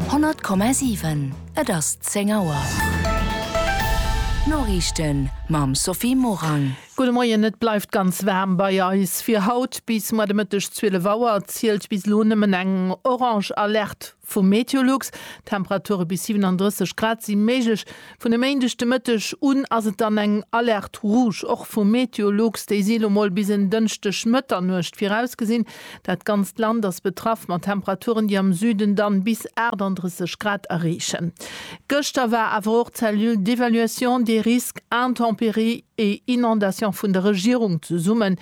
100,7 Et ass 10 Auer. D'Noriichten mam Sophie Morang. Gudde Moien, Et bleift ganz waarm bei eis fir haut. Bis muer de Mëtteg 12 Auer zielt bis elo nëmmen eng orange Alerte vu Meteolux. Temperature bis 37 Grad si méiglech, Vun e Méindeg de Mëtteg un ass et dann eng Alerte rouge, och vu Meteolux. Déi si lo mol bis en Dënschdeg Mëtternuecht virausgesinn. Dat ganzt Land ass betraff, mat Temperaturen, déi am Süden dann bis 38 Grad erreechen. Gëschter war awer och d'Cellule d'évaluation des risques intempéries et inondations vun der Regierung zesummen.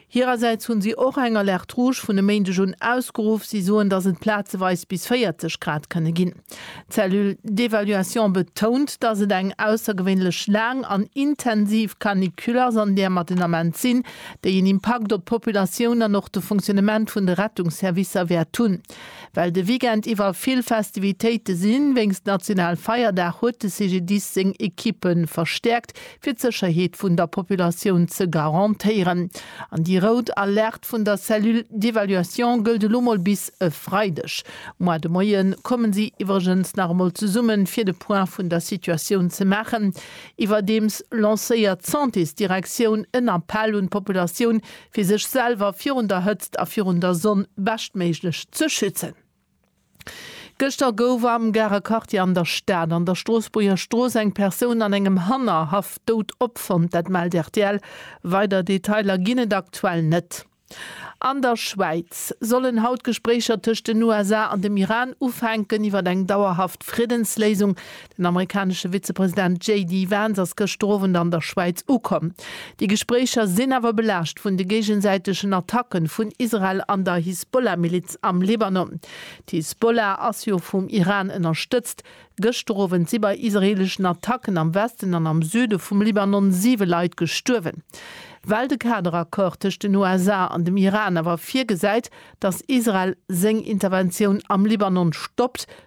Hirersäits hunn si och eng Alerte Rouge vun e Méindeg un ausgeruff. Si soen, dass et plazeweis bis 40 Grad kënne ginn. D'Cellule d'évaluation betount, dass et eng aussergewéinlech laang an intensiv Canicule ass, an där mer den Ament sinn, déi en Impakt op d'Populatioun an och de Fonctionnement vun de Rettungsservicer wäert hunn. Well de Weekend iwwer vill Festivitéite sinn, wéinst Nationalfeierdag, huet de CGDIS seng Ekippe verstäerkt, fir d'Sécherheet vun der Populatioun ze garantéieren. An déi rout Alerte vun der Cellule d'évaluation gëllt elo mol bis e Freideg. Moar de Moie kommen si iwwregens nach emol zesummen, fir de Point vun der Situatioun ze maachen. Iwwerdeems lancéiert d'Santésdirektioun en Appell un d'Populatioun, fir sech selwer virun der Hëtzt a virun der Sonn beschtméiglech ze schützen. Gëschter gouf am Garer Quartier an der Stad an der Stroossbuerger Strooss eng Persoun an engem Hannerhaff dout opfonnt. Dat mellt rtl. Weider Detailer ginn et aktuell net. An der Schwäiz sollen haut Gespréicher tëscht den USA an dem Iran ufänken iwwer eng dauerhaft Friddensléisung. Den amerikanesche Vizepresident JD Vance ass gëschter Owend an der Schwäiz ukomm. Déi Gespréicher sinn awer belaascht vun de géigesäitegen Attacken vun Israel an der Hisbollah-Miliz am Libanon. D'Hisbollah ass jo vum Iran ënnerstëtzt. Gëschter Owend si bei israeeleschen Attacken am Westen an am Süde vum Libanon siwe Leit gestuerwen. Well de Kaderaccord tëscht den USA an dem Iran awer virgesäit, datt Israel seng Interventioun am Libanon stoppt,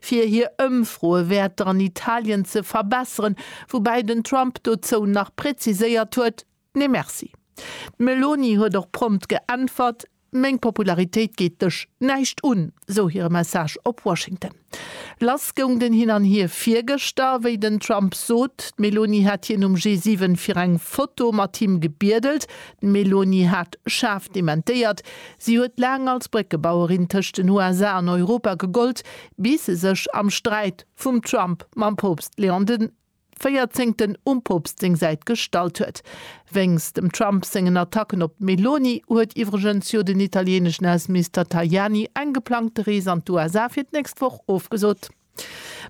fir hir Ëmfroewäerter an Italien ze verbesseren, woubäi den Trump dozou nach präziséiert huet, Nee Merci. D'Meloni huet och prompt geäntwert, Meng Popularitéit geet dech näischt un, sou hire Message op Washington. Lass goung den Hin an Hier virgëschter, wéi den Trump sot, d'Meloni hätt hien um G7 fir eng Foto mat him gebiedelt, D'Meloni hat schaarf dementéiert. Si huet laang als Bréckebauerin tëscht den USA an Europa gegollt, bis se sech am Sträit vum Trump mam Poopst Leon de Véierzéngten um Poopst seng Säit gestallt huet. Wéinst dem Trump sengen Attacken op d'Meloni huet iwwregens jo den italieneschen Ausseminister Tajani eng geplangte Rees an d'USA fir d'nächst Woch ofgesot.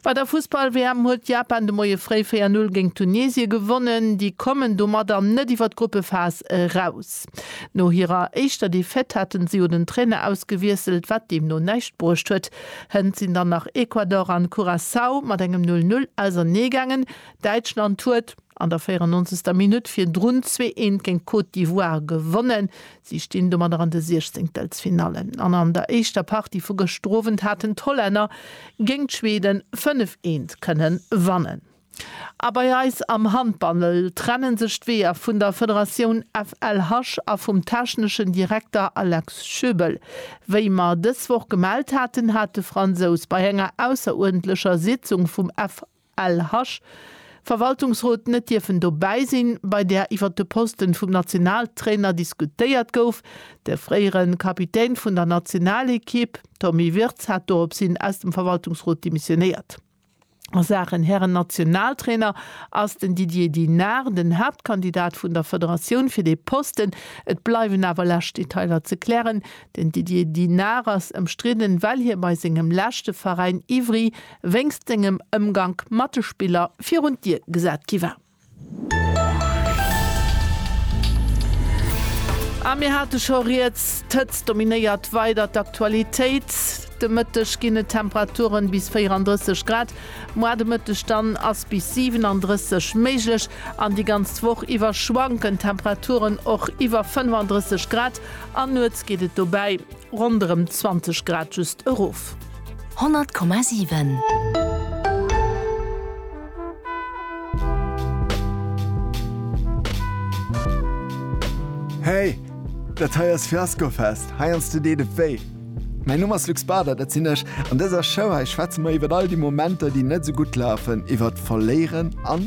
Bei der Fussball-WM huet Japan de Moie fréi 4, 0 géint Tunesie gewonnen. Déi kommen domat an net iwwer d'Gruppephas eraus. No hirer éischter Defaite haten se jo den Trainer ausgewiesselt, wat deemno näischt bruecht huet. Hënt sinn dann nach Ecuador an Curaçao mat engem 0, 0 auserneegaangen. Däitschland huet. An der 94. Minutt virdrun zwee eent géint d'Côte d'Ivoire gewonnen. Si stinn domadder an de Siechzéngteltsfinallen. An an der éischter Partie vu gëschter Owend haten d'Hollänner géint d'Schweden fënnef eent kënne wannen. A bei eis am Handball trenne sech d'Weeër vun der Federatioun FLH a vum techneschen Direkter Alex Schöbel. Wéi mer dës Woch gemellt haten, hat de Fransous bei enger ausseruerdentlecher Sitzung vum F. LH. Verwaltungsrot net dierfen dobäi sinn, bei där iwwer de Posten vum Nationaltrainer diskutéiert gouf. De fréieren Kapitän vun der Nationalekipp Tommy Wirtz hat dorops hin aus dem Verwaltungsrot demissionéiert. A Saachen Herren-Nationaltrainer ass den Didier Dinard den Haaptkandidat vun der Federatioun fir dee Posten. Et bleiwen awer lescht Detailer ze klären. Den Didier Dinard ass ëmstridden, well hie bei sengem leschte Veräin Ivry wéngst sengem Ëmgank mat de Spiller virun d'Dier gesat gi war. A mir hate scho riets, d'Hëtzt dominéiert weider d'Aktualitéit. De Mëtteg ginn et Temperaturen bis 34 Grad, moar de Mëtteg dann ass bis 37 méiglech an déi ganz Woch iwwer schwanken d'Temperaturen och iwwer 35 Grad an nuets geet et dobäi Ronderem 20 Grad just erof. 100,7. Hey! Dat hei ass Fiaskofest, heiansdo deet et wéi. Mäin Numm ass Luc Bader, dat sinn ech. An dëser Show hei schwätze mer iwwer all déi Momenter, déi net esou gutt lafen, iwwert Verléieren an.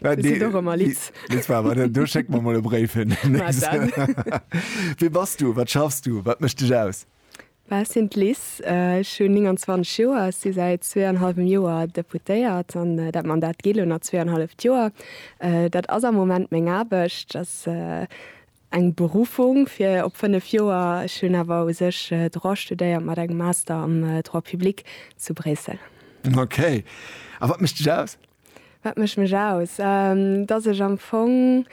Äh, Di sinn och ëmmer litt. Litt war awer, du schéck mer mol e Bréif hin. Wat dann? Wie bass du? Wat schaffs du? Wat mécht dech aus? Well sinn d'Liz, äh, ech hunn 29 Joer, ech si säit zwee an hallwem Joer Deputéiert an äh, dat Mandat geet elo nach zwee an halleft Joer. Äh, dat ass am Moment meng Aarbecht, ass äh, eng Berufung fir op fënnef Joer. Ech hunn awer u sech äh, Droit studéiert mat engem Master am äh, Droit public zu Bréissel. Okay. A wat mécht dech aus? Wat mécht mech aus? Dass ech am Fong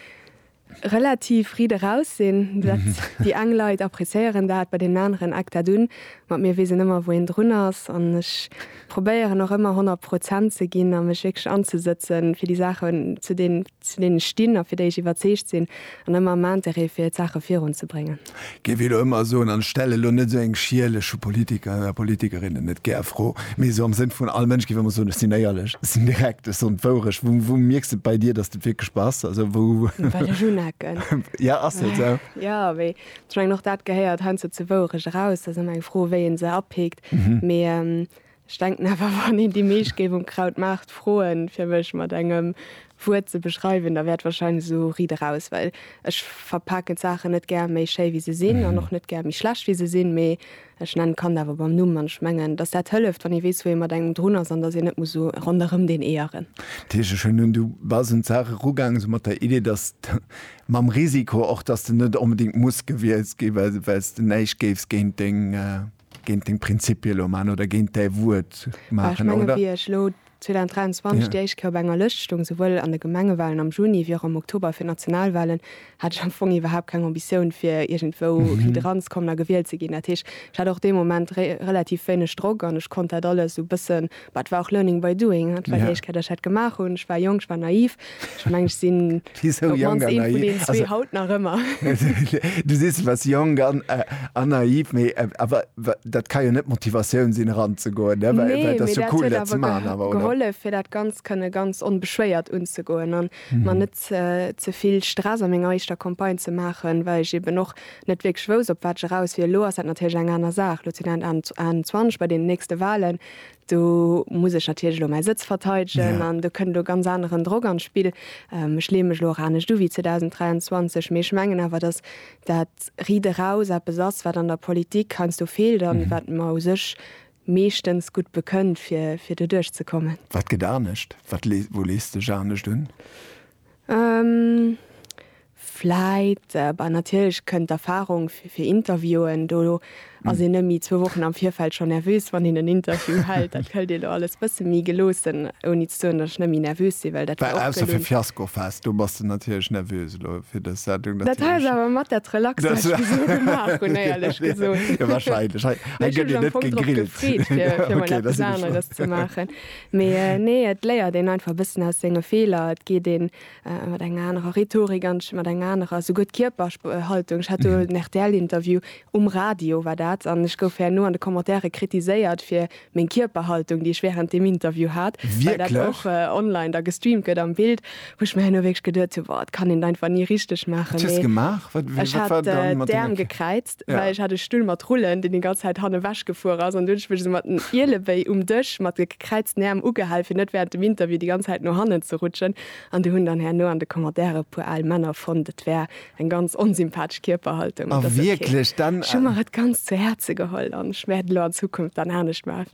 relativ frid eraus sinn. Dat déi eng Leit appréciéieren dat, bei deenen aneren eckt dat un. Mat mir weess een ëmmer, wou een drun ass. An ech probéieren och ëmmer honnert Prozent ze ginn a mech wierklech anzesëtzen, fir déi Saachen, zu deenen. zu deene stinn a fir déi ech iwwerzeegt sinn, an ëmmer am Interêt fir d'Saache virun ze bréngen. Géif elo ëmmer soen, an ech stellen elo net esou eng schierlech, vu Politikern a Politikerinnen net gär, Fro, mee esou am Sënn vun all Mënsch géif ëmmer soen, ech sinn éierlech, ech sinn direkt, ech soen d'Wourecht. Wou, wou mierks de et bei dir, datt et wierklech bass? Also wou? Well ech unecken. Jo, ass jo esou. Jo, mee ech mengen, och dat gehéiert heiansdo zur Wourecht eraus. Dat ass ëmmer eng Fro, wéi ee se apikt. Mee Ech denken awer, wann een déi meescht géif um Krautmaart froen, fir mech mat engem Wuert ze beschreiwen, da wäert wahrscheinlech esou Ried eraus, well ech verpaken d'Saachen net gär méi schéi, wéi se sinn, an och net gär méi schlecht, wéi se sinn, mee ech nennen d'Kand awer beim Numm. An ech mengen, dass dat hëlleft, wann ee weess, wou ee mat engem drun ass, an dass een net muss esou ronderëm deen Eeër rennen. Dat heescht, ech hunn un, du bass un d'Saach erugaangen, esou mat der Idee, dass de, mam Risiko och, dass de net onbedéngt muss gewielt ginn, well s de näischt géifs géint deng, géint deng Prinzipie lo maachen oder géint däi Wuert maachen, oder? Ech menge wéi ech elo 2023 déi éischt Kéier op enger Lëscht stoung, souwuel an de Gemengewalen am Juni wéi och am Oktober fir d'Nationalwalen, hat ech am Fong iwwerhaapt keng Ambitioun fir iergendwou méi dran ze kommen a gewielt ze ginn. Dat heescht, ech hat och dee Moment relativ wéineg Drock an ech konnt dat alles esou e bëssen Bah, et war och learning by doing. Dat war déi éischt Kéier, datt ech dat gemaach hunn. Ech war jonk, ech war naiv. Ech meng, ech sinn op d'mannst een vun deenen zwee haut nach ëmmer. Du sees, du waars jonk an naiv, mee awer dat ka jo net d'Motivatioun sinn, eranzegoen, ne? Well et ass jo cool, dat ze maachen awer, oder? Nee, mee dat huet awer gehollef, fir dat Ganzt kënne ganz onbeschwéiert unzegoen a mer net ze vill Stress a menger éischter Campagne ze maachen, well ech eben och net wierklech wousst, op wat ech eraus wier. Elo ass dat natierlech eng aner Saach. Elo sinn et 21 bei deenen nächste Walen. Do muss ech natierlech elo mäi Sëtz verteidegen an do kënnt elo ganz aneren Drock an d'Spill. Ech leeë mech elo och anescht u wéi 2023, mee ech mengen awer, datt dat Riit eraus eppes ass, wat an der Politik heiansdo feelt a wat mer u sech meeschtens gutt bekënnt, fir doduerch ze kommen. Wat gëtt anescht? Wou lees de Ech anescht un? Vläit, bah natierlech kënnt d'Erfahrung fir Interviewen, do ass een nëmme zwou Wochen am Virfeld schonn nervös, wann een en Interview hält. Dat hëlt ee lo alles bësse méi geloossen, ouni ze soen, datt ech net méi nervös sinn, well dat war och gelunn. Ausser fir Fiaskofest, do bass de natierlech nervös elo fir dës Sendung. Dat hat ech awer mat dat Relaxt, wat ech esou gemaach hunn, éierlech gesot. Jo, wahrscheinlech. Hei gëtt een net gegrillt. Ech hu mech am Fong drop gefreet, fir emol eppes aneres ze maachen. Mee nee, et léiert een einfach e bëssen aus senge Feeler. Et geet een mat enger anerer Rhetorik an mat enger anerer souguer d'Kierperhaltung. Ech hat do mhm. en RTL-Interview um Radio war dat an ech gouf herno an de Kommentare kritiséiert fir meng Kierperhaltung, déi ech während dem Interview hat, Wirklich? weil dat och äh, online da gestreamt gëtt am Bild, wo ich mir herno wirklich geduet habe, boah, kann den einfach nie richtig machen. Was hast du gemacht? Wat, wat, ich hat äh, Därm gekräit. well ech hat e Stull mat Rullen, deen déi ganz Zäit han ewech gefuer ass, an du hunn ech mech esou mat den Ielewéi um Dësch mat de gekräizten Äerm ugehal, fir net während dem Interview déi ganz Zäit no hannen ze rutschen. An du hunn dann herno an de Commentaire e puer al Männer fonnt, et wär eng ganz onsympathesch Kierperhaltung. An dat ass ok. Ech hu mer et ganz zu Häerze geholl an ech wäert et elo an Zukunft dann anescht maachen.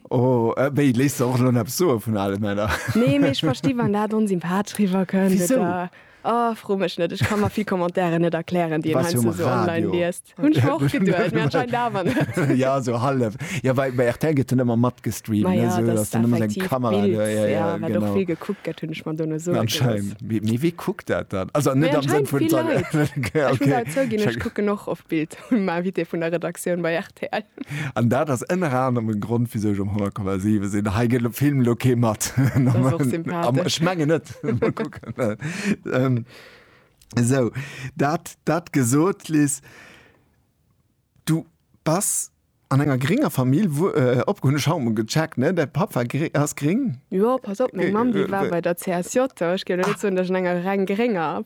O wéi, léisst de och elo eppes soe vun ale Männer? Nee, mee ech versti wann dat onsympathesch riwwer kënnt oder. Wisou? Oh, fro mech net, ech ka mer vill Commentairen net erklären, déi een Was jo am heiansdo so online Radio. liest. Hunn ech mer och geduecht, mee anscheinend awer net. ja, sou hallef. Ja, well bei RTL gëtt dann ëmmer matgestreamt, Ma ne, ja, sou, dass dass dann ëmmer seng effektiv Kamera d'Bild, do, ja, ja, wat och genau. vill gekuckt gëtt, hunn ech mer dono soe gelooss. Anscheinend. Mee, mee wee kuckt dat dann? Also Mee net am Sënn anscheinend vun vill Leit. Ech muss awer zouginn, ech kucken och oft d'Bild vum Invité vun der Redaktioun bei An dat ass ënner anerem e Grond, wisou ech um 100,7 sinn. Hei gëtt Film elo kee mat. Ech mengen net. Mol kucken. Esou, dat, dat gesot, Liz, du bass an enger grénger Famill opge. Hunn ech haut mol gecheckt, ne? Däi Papp war gri, ass gréng? Jo, pass op, meng Mamm, déi war bei der CSJ. Ech géif elo net soen, datt ech an enger reng grénger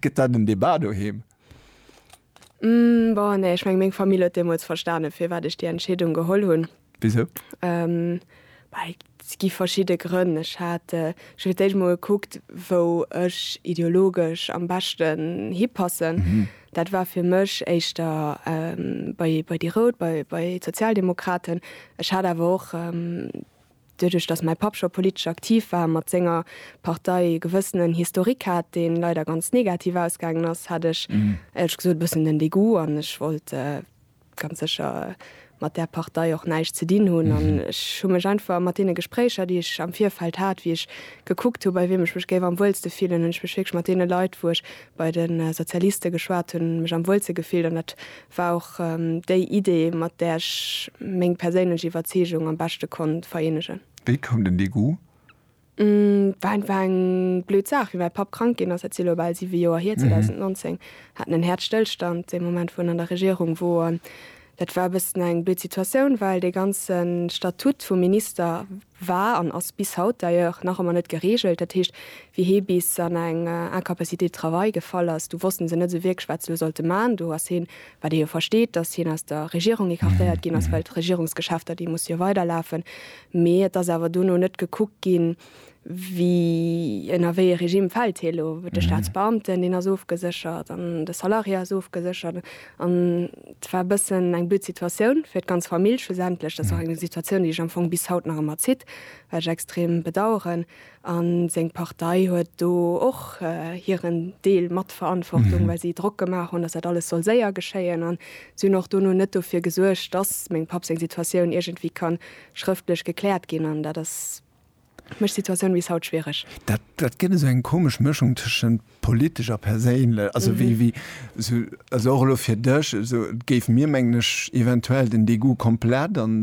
Gëtt dat en Debat doheem? Bon, nee, ech mengen, meng Famill huet deemools verstanen, firwat ech déi Entscheedung geholl hunn. Wisou? Well et gi verschidde Grënn. Ech hat fir d'éischt emol gekuckt, wou ech ideologesch am beschten hipassen. Dat war fir mech éischter bei déi Rout, bei d'Sozialdemokraten. Ech hat awer och. Doduerch datt mäi Papp scho politesch aktiv war, mat senger Partei e gewëssenen Historique hat, deen leider ganz negativ ausgaangen ass, hat ech éierlech gesot e bëssen den Dégoût an ech wollt ganz sécher mat där Partei och näischt ze dinn hunn. An ech hu mech einfach mat deene Gespréicher, déi ech am Virfeld hat, wéi ech gekuckt hu bei wiem ech mech géif am wuelste fillen, hunn ech mech wierklech mat deene Leit, wou ech bei de Sozialiste geschwat hunn, mech am wuelste gefillt. An dat war och déi Idee, mat där ech meng perséinlech Iwwerzeegung am beschte konnt vereenegen. Wéi koum den Degoût? Et war einfach eng blöd Saach. Wéi mäi Papp krank ginn ass, dat si elo bal siwe Joer hier, 2019, hat en en Häerzstëllstand, dee Moment, wou en an der Regierung wor. An dat war e bëssen eng blöd Situatioun, well dee ganze Statut vum Minister, war an ass bis haut d'ailleurs nach ëmmer net gereegelt. Dat heescht, wéi hee bis an eng Incapacité de travail gefall ass, du wossten se net esou wierklech, wat se elo sollte maachen. Do ass heen, wat ee jo versteet, datt hien aus der Regierung écartéiert ginn ass, well d'Regierungsgeschäfter, déi musse jo weiderlafen. Mee et ass awer duerno net gekuckt ginn, wéi, ënner wéi ee Regime fält hee elo. De Staatsbeamten, deen ass ofgeséchert an de Salarié ass ofgeséchert. An et war e bëssen eng blöd Situatioun fir d'ganz Famill schlussendlech. Dat ass och eng Situatioun, déi iech am Fong bis haut nach ëmmer zitt, wat ech extrem bedauern. A seng Partei huet do och hiren Deel mat Verantwortung, well si Drock gemaach hunn, datt dat alles soll séier geschéien. An si hunn och dono net dofir gesuergt, datt mengem Papp seng Situatioun iergendwéi ka schrëftlech gekläert ginn. An dat ass. mécht d'Situatioun bis haut schwiereg. Dat dat gëtt esou eng komesch Mëschung tëschent politesch a perséinlech, also wéi wéi esou also och elo fir dech esou et géif mir, mengen ech, eventuell den Degoût komplett an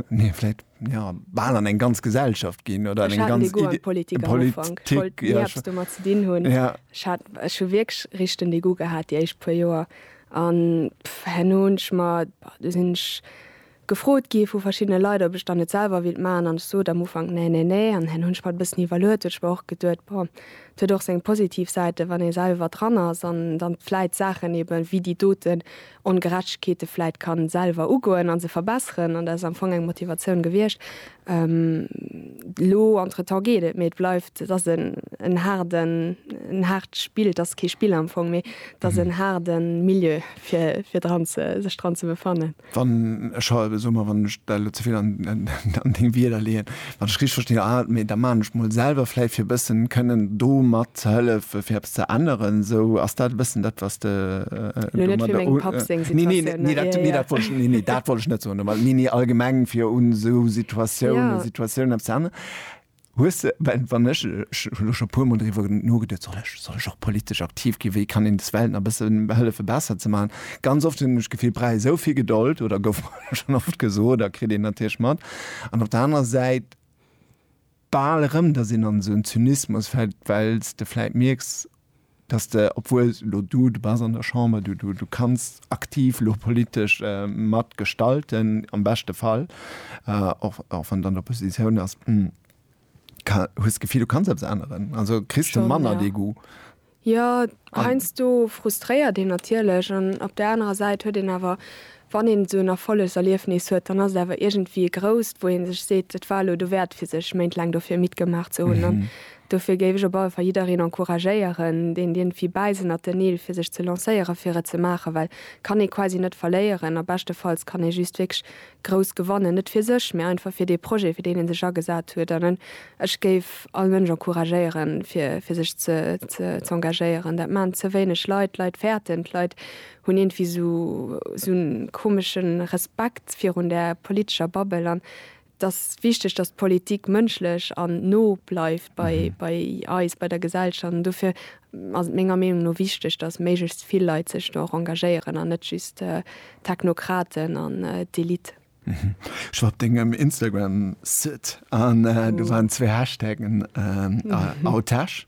nee vläicht jo bal an eng ganz Gesellschaft ginn oder an eng ganz Idee an d'Politik am Ufank, ech wollt ni eppes domat ze dinn hunn, ech hat ech hu wierklech richteg den Degoût gehat déi éischt puer Joer an herno hunn ech mer, bah do sinn ech gefrot gi vu verschiddene Leit, ob ech dann net selwer willt maachen, an ech sot am Ufank nee, nee, nee, an dann hunn ech mer et e bëssen iwwerluet, well ech mer och geduet, bon, et huet och seng positiv Säiten, wann ee selwer dran ass an dann vläit Saachen eben wéi déi doten Ongerechtegkeete vläit ka selwer ugoen a se verbesseren, an dat ass am Fong eng Motivatioun gewiescht. Elo entretemps geet et, mee et bleift, et ass en haarden, en haart Spill, et ass kee Spill am Fong, mee et ass en haarde Milieu fir, fir dran ze, sech dran ze befannen. Wann ech ha, soe mer, wann ech dat elo ze vill an Deng Wierder leeën, wann ech richteg verstinn, ah, mee da maachen ech mol selwer vläicht fir e bëssen kënnen do mat ze hëllefen, fir eppes ze änneren. Esou, ass dat e bëssen dat, wat s de domadder u. Nee, nee, nee, dat, nee, dat wollt ech, nee, nee, dat wollt ech net soen domadder, nee, nee, allgemeng fir un esou Situatiounen, Situatiounen eppes ze änneren. Hues de, well wann ech, ech hu lo scho puer mol driwwer nogeduet, soll ech, soll ech och politesch aktiv gi, wéi kann een des Welt nach e bësse hëllefe besser ze maachen. Ganz oft hunn ech d'Gefill, brauch ee sou vill Gedold, oder gouf mer schonn oft gesot a kritt een natierlech mat, an op der anerer Säit bal erëm, datt een an esou en Zynismus fält, well s de vläit mierks, dass de, obwuel elo du, du bass an der Chamber, du, du, du kanns aktiv elo politesch mat gestalten, am beschte Fall, och, och wann de an der Oppositioun ass, ka, hues d'Gefill, du kanns eppes änneren? Also kriss de manner dee Goût? Jo, heiansdo frustréiert een natierlech an op där anerer Säit huet een awer Wann een esou en Erfollegserliefnis huet, dann ass et awer iergendwéi e grousst, wou ee sech seet, et war elo dowäert fir sech Méint laang dofir midd gemaach ze hunn. An dofir géif ech op alle Fall jiddereen encouragéieren, deen iergendwéi bäi sinn, at den il fir sech ze lancéieren, fir et ze maachen, well kann ee quasi net verléieren a beschtefalls kann ee just wierklech grouss gewannen, net fir sech, mä einfach fir dee Projet, fir deen ee sech agesat huet. An ech géif all Mënsch encouragéieren, fir sech ze engagéieren. Dat maachen ze wéineg Leit. D'Leit fäerten, d'Leit Hunn ierndwéi sou en komesche Respekt virun der politescher Bubble an et ass wichteg, datt d'Politik mënschlech an no bleift bei bei eis, bei der Gesellschaft an dofir ass et menger Meenung no wichteg, datt méiglechst vill Leit sech do och engagéieren an net just d'Technokraten an d'Elite. Ech war op dengem Instagram Site an do waren zwee Hashtaggen, Autech.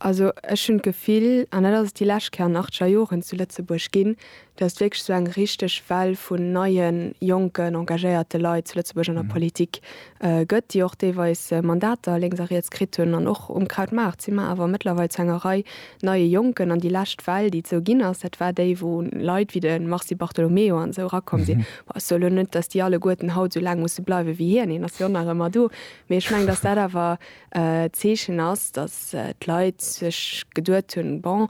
Also ech hunn d'Gefill, an dat ass et déi lescht Kéier an achter Joren zu Lëtzebuerg ginn, datt wierklech esou eng richteg Well vun neien, jonken, engagéierte Leit zu Lëtzebuerg an der Politik gëtt, déi och deelweis Mandater lénks a riets kritt hunn. An och um Krautmaart si mer awer mëttlerweil zu enger Rei neie Jonken. An déi lescht Well, déi et esou ginn ass, dat war déi, wou Leit wéi de Mars Di Bartolomeo an esou erakomm sinn. Bon, ech soen elo net, datt déi alleguerten haut esou laang musse bleiwe wéi hien, hien ass jo nach ëmmer do, mee ech mengen, datt dat awer Zeechen ass, datt d'Leit sech geduet hunn, bon,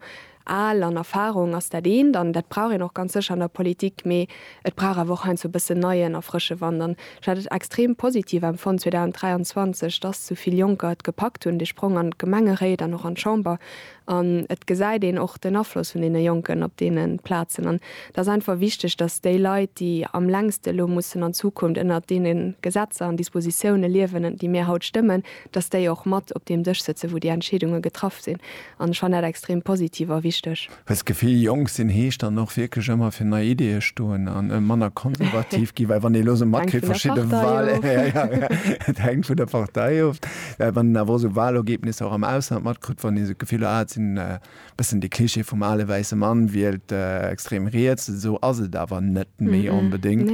al an Erfarung ass dat eent, an dat brauch een och ganz sécher an der Politik, mee et brauch awer och heiansdo e bëssen neien a frësche Wand. An ech hat et extrem positiv empfonnt 2023, datt esou vill Jonker et gepackt hunn, dee Sprong an d'Gemengeréit an och an d'Chamber An et gesäit een och den Afloss vun deene Jonken op deene Plazen. An et ass einfach wichteg, dass déi Leit, déi am längste elo mussen an Zukunft ënnert deene Gesetzer an Dispositioune liewen, déi mir haut stëmmen, dass déi och mat op deem Dësch sëtzen, wou déi Entscheedunge getraff sinn. An ech fannen dat extrem positiv a wichteg. Well d'Gefill jonk sinn heescht dann och wierklech ëmmer fir nei Ideeë stoen a manner konservativ ginn. Well wann ee elo esou matkritt, verschidde Wahlen, et hänkt vun der Partei of, Well wann een awer och sou Wahlergebnisser och am Ausland matkritt, wann een sou d'Gefill huet, ah et sinn e bëssen de Klischee vum ale wäisse Mann wielt extrem riets, esou ass et awer net méi onbedéngt.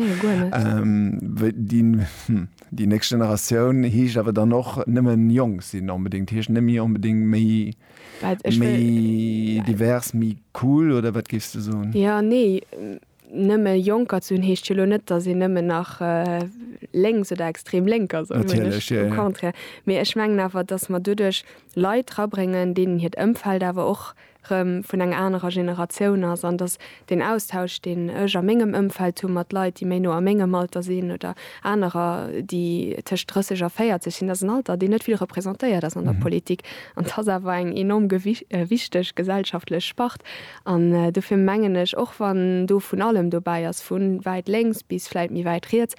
Déi nächst Generatioun heescht awer dann och nëmme jonk sinn onbedéngt, heescht net méi onbedéngt méi divers, méi cool oder wat géifs de soen? Jo, nee, Nëmme Jonker ze hunn, heescht jo elo net, datt een nëmmen nach lénks oder extrem lénk ass, au contraire. Mee ech mengen awer, datt mer doduerch Leit erabréngen, deenen hiert Ëmfeld awer och erëm vun enger anerer Generatioun ass an datt deen Austausch, deen ech a mengem Ëmfeld hu mat Leit, déi méi no a mengem Alter sinn oder anerer, déi tëscht 30 a 40 sinn, dat ass en Alter, deen net vill representéiert ass an der Politik. An et ass awer eng enorm wichteg gesellschaftlech Spart. An dofir mengen ech, och wann do vun allem dobäi ass, vu wäit lénks bis vläicht méi wäit riets,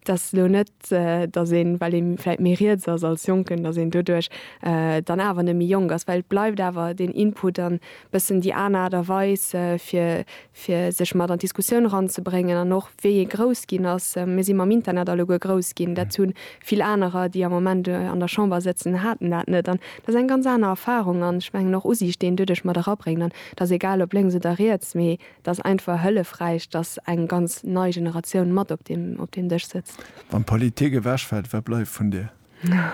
dass elo net, dass een, well ee vläicht méi riets ass als Jonken, dass een doduerch dann awer net méi jonk ass, well et bleift awer deen Input an e bëssen déi aner Aart a Weis, fir, fir sech mat an d'Diskussioun eranzebréngen. An och wéi ee grouss ginn ass, mir si mam Internet alleguer grouss ginn, dat hu Vill anerer, déi am Moment an der Chamber sëtzen, haten dat net. An dat ass eng ganz aner Erfahrung an ech mengen och Usiicht, déi een doduerch mat erabréngt. An et ass egal, ob lénks oder riets, mee et ass einfach hëllefräich, dass eng ganz nei Generatioun mat op deem, op deem Dësch sëtzt. Wann d'Politik ewechfält, wat bleift vun dir?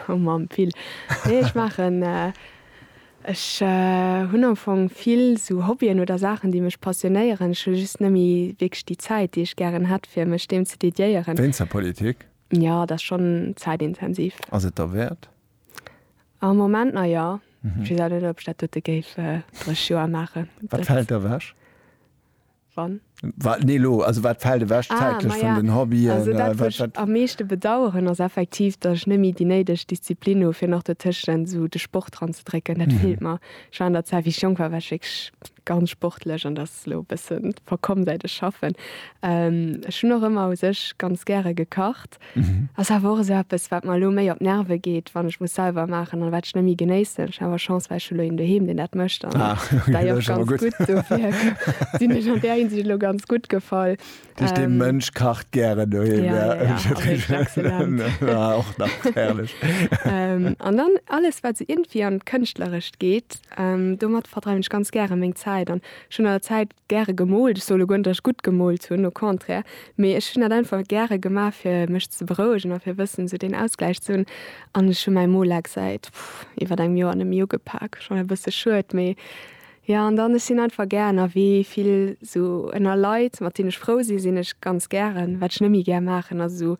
Oh Mamm, vill. Nee, ech maachen, ech hunn am Fong vill esou Hobbyen oder Saachen, déi mech passionéieren. Ech hu just net méi wierklech déi Zäit, déi ech gären hätt, fir mech deem ze dediéieren. Wéinst der Politik? Ja, dat ass schonn zäitintensiv. Ass et derwäert? Am Moment nach ja. Ech weess awer net, ob ech dat dote géif 30 Joer maachen. Wat fält ewech? Wann? Wa, nee, elo, also wat fält ewech zäitlech vun den Hobbyen? Ah, maja, also dat, wat ech am meeschte bedaueren, ass effektiv, datt ech net méi déi néideg Disziplin hu fir nach dotëschent esou de Sport dran ze drécken. Dat feelt mer. Ech war an der Zäit, wéi ech jonk war, war ech wierklech ganz sportlech an dat ass elo e bësse verkomm säit ech schaffen. Ech hunn och ëmmer u sech ganz gäre gekacht. Ass awer och esou eppes, wat mer elo méi op d'Nerve geet, wann ech muss selwer maachen an wat ech net méi genéissen. Ech hu awer Chance, well ech hu elo een doheem, deen dat mécht an dat jo och ganz gutt. Dofir sinn ech an där Hinsicht elo ganz gutt gefall. Dich den ähm, Mönch kacht gären du ja, ja, ja, ja, och nach herrlech ähm, an dann alles wat se so irgendwie an kënchtlerecht geht ähm, domat verdreiwen ich ganz gäre meng Zeit an schon der Zeit gäre gemolt solo gonntech gut gemolt hunn no contraire mir ech hun dat einfach gäre gemar fir mech ze berouegen a fir wëssen se den ausgleich zun an schon mein Molex seit iwwer engem Joer an dem Jo gepak schon e bësse schuet méi Ja an dann ech sinn einfach gär ënner wee vill sou ënner Leit mat deen ech frou sinn sinn ech ganz gären. Wat ech net méi gär maachen ass esou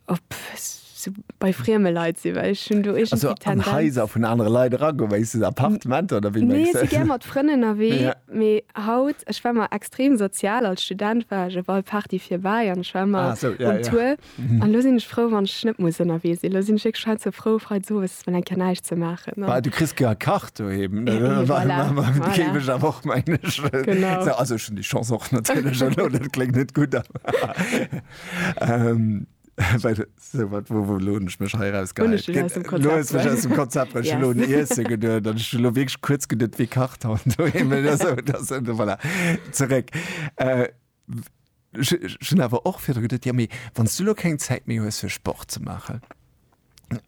op sou bei frieme Leit sinn well ech hunn do iergendwéi d'Tendenz. Also an Haiser vun anere Leit eragoen, wéi sou Appartementer oder wéi mengs de? Nee si gär mat Frënn ënnerwee mee haut ech war mar extrem sozial als Student war ech op all Party fir bäi an ech war mar um Tour. An lo sinn ech frou wann ech net muss ënnerwee sinn. Lo sinn ech wierklech hei ze frou freits owes mol eng Kéier näischt ze maachen. Bah du kriss jo e Kach doheem. Et géif ech awer och mengen. Sou also ech hunn déi Chance och natierlech elo. Dat kléngt net gutt awer well sou wat wou wou lo hunn ech mech hei eraus gehäit? Hunn ech dech aus dem Konzept bruecht? Lo hues mech aus dem Konzept bruecht. Ech hunn elo un Iesse geduet an ech hunn elo wierklech kuerz geduet wie kacht haut doheem. Voilà zeréck. Ech hunn awer och virdru geduet, jo, mee wann s du elo keng Zäit méi hues, fir Sport ze maachen,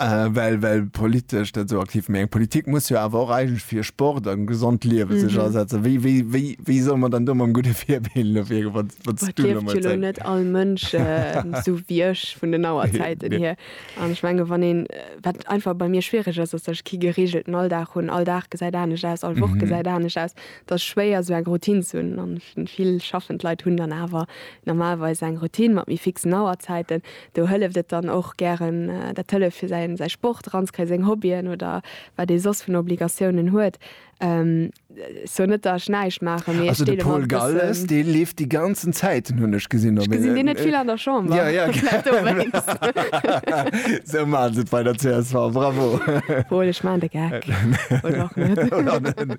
well, well politesch dat esou aktiv, mee eng Politik muss jo awer och eigentlech fir Sport a gesond Liewe sech asetzen. Wéi, wéi, wéi, wéi solle mer dann do mam gudde Virbild elo virgoen, wa, wa s du elo emol Zäit. Well et lieft jo elo net all Mënsch esou wéi ech vun den Auerzäiten hier. An ech menge wann een, wat einfach bei mir schwiereg ass, ass, datt ech kee geregelten Alldag hunn. All Dag gesäit anescht aus, all Woch gesäit anescht aus. Et ass schwéier esou eng Routine ze hunn an vill schaffend Leit hunn dann awer normalerweis eng Routine mat méi fixen Auerzäiten. Do hëlleft et dann och gären dat hëlleft fir säin säi Sport eranzekréien, seng Hobbyen oder wat ee soss vun Obligatiounen huet. Ech soen net datt ech näischt maachen, mee ech deele mer e bëssen. Also de Paul Galles, dee leeft déi ganzen Zäiten hunn ech gesinn op. Ech gesinn deen net vill an der Chamber. Jo, jo. Vläicht dowéinst. Esou maache se et bei der csv. Bravo. Paul, ech maachen de Geck. Oder och net. Oder net.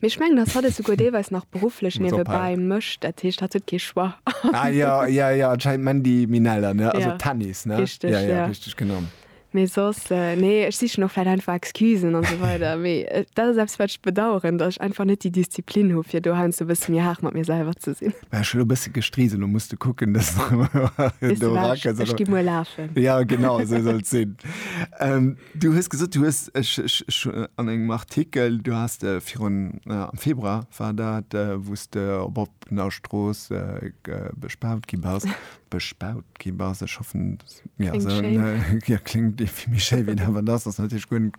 Mee ech mengen, dass hatt et souguer deelweis nach berufflech Muss ophalen. niewebäi mécht. Dat heescht, hatt huet kee Choix. Ah jo, jo, jo, anscheinend Mandy Minella, ne? Also Ja. Tennis, ne? Richteg, Ja, ja, ja. richteg, genau. Mee soss, nee, ech sichen och vläit einfach Excusen a sou weider. Mee dat ass eppes, wat ech bedauern, datt ech einfach net déi Disziplin hu fir do heiansdo e bësse méi haart mat mir selwer ze sinn. War ech elo e bësse gestrisen, elo muss de kucken, dass Weess du do wars, erakënns, ech oder? gi muer lafen. Ja, genau, esou soll et sinn. Ähm. Du hues gesot, du hues, ech, ech, ech an engem Artikel, du has de virun, am Februar war dat, wou s de op oppener Strooss bespaut gi bass, bespaut gi bass, ech hoffen, ja, esou, ja, kléngt e vill méi schéi wéi dat, wat et ass, ass natierlech guer net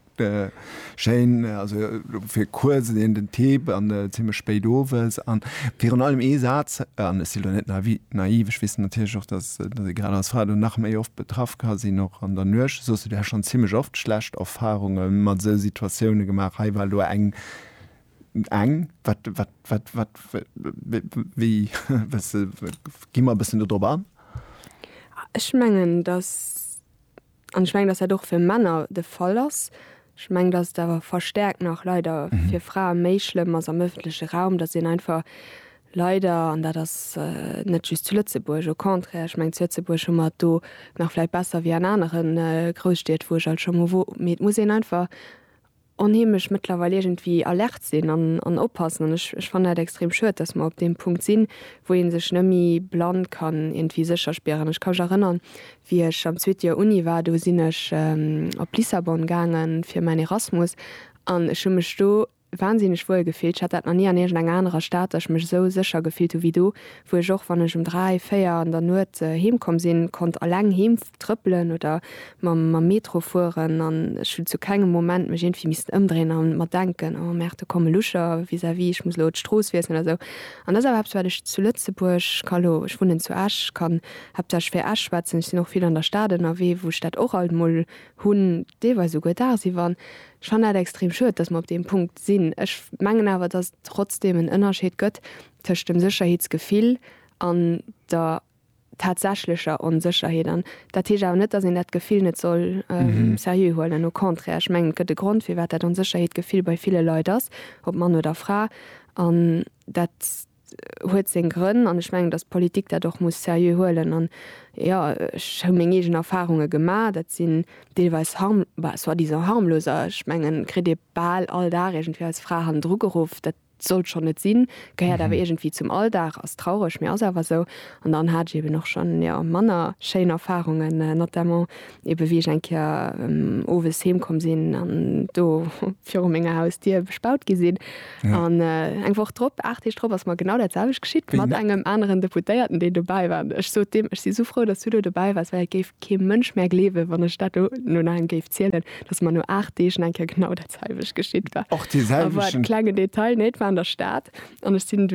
schéin, also fir kuerz en den T an zimmlech spéit owes. An virun allem ee Saz, an ech sinn elo net naiv, ech weess natierlech och, dass, dass ee grad als Fra do nach méi oft betraff ka sinn, och an der Nuecht. Soss hutt Dir schonn zimmlech oft schlecht Erfarunge mat esou Situatioune gemaach. Hei war elo eng, eng, wat, wat, wat, wat, wéi, gi mer e bëssen do drop an. Ech mengen, dass. An ech mengen, dass dat och fir Männer de Fall ass. Ech mengen, dass et awer verstärkt nach leider fir Frae méi schlëmm ass am öffentleche Raum, dass een einfach leider, an dat ass net just zu Lëtzebuerg, au contraire, ech mengen, zu Lëtzebuerg hu mer et do nach vläicht besser wéi an anere Grousstied, wou ech alt scho mol wor, mee et muss een einfach onheemlech mëttlerweil iergendwéi alert sinn an oppassen. An ech fannen dat extrem schued, dass mer op deem Punkt sinn, wou ee sech nëmme blann kann iergendwéi sécher spieren. Ech ka mech erënnern, wéi ech am zweete Joer Uni war, do sinn ech op Lissabon gaange fir mäin Erasmus an ech hu mech do wahnsinneg wuel gefillt. Ech hat dat nach ni an iergendeng anerer Stad, dass ech mech esou sécher gefillt hu wéi do, wou ech och wann ech um 3, 4 an der Nuet heem komm sinn, konnt alleng heem trëppelen oder mam mam Metro fueren an ech hunn zu kengem Moment mech iergendwéi missten ëmdréien an mer denken, oh merde do komme Lucher vis-à-vis, ech muss elo d'Strooss wiesselen oder sou. An dat ass awer eppes wat ech zu Lëtzebuerg, ka elo, ech wunnen zu Esch, kann haaptsächlech fir Esch schwätzen, ech sinn och vill an der Stad ënnerwee, wou ech dat och alt mol hunn, deelweis esouguer dagsiwwer. An ech fannen dat extrem schued, datt mer op deem Punkt sinn. Ech mengen awer, datt et trotzdem en Ënnerscheed gëtt, tëscht dem Sécherheetsgefill an der tatsächlecher Onsécherheet an dat heescht awer net, dass een dat Gefill net soll seriö huelen, au contraire. Ech mengen, et gëtt e Grond, firwat dat Onsécherheetgefill bei ville Leit ass, ob Mann oder Fra, an dat huet seng Grënn an ech mengen, dass d'Politik dat och muss seriö huelen an, jo, ech hu meng eegen Erfarunge gemaach, dat sinn deelweis harm, bah, soi-disant harmlos, ech mengen, kritt ee bal all Dag iergendwéi als Fra hannendru geruff, dat Sollt schonn net sinn, gehéiert awer iergendwéi zum Alldag, ass traureg, mee ass awer esou. An dann hat ech eben och schonn, jo, manner schéin Erfarungen, notamment eben, wéi ech eng Kéier owes heem komm sinn an do viru menger Hausdier bespaut gi sinn. An eng Woch drop, aacht Deeg drop ass mer genau dat selwecht geschitt mat engem aneren Deputéierten, deen dobäi war. An ech sot deem, ech si sou frou, dass du do dobäi waars, well et géif kee Mënsch mär gleewen, wann ech dat do no engem géif zielen, dass mer no aacht Deeg nach eng Kéier genau dat. selwecht geschitt war. Och dee selwechten. Awer e klenge Detail, nee, et war an der Stad an ech sinn dunn.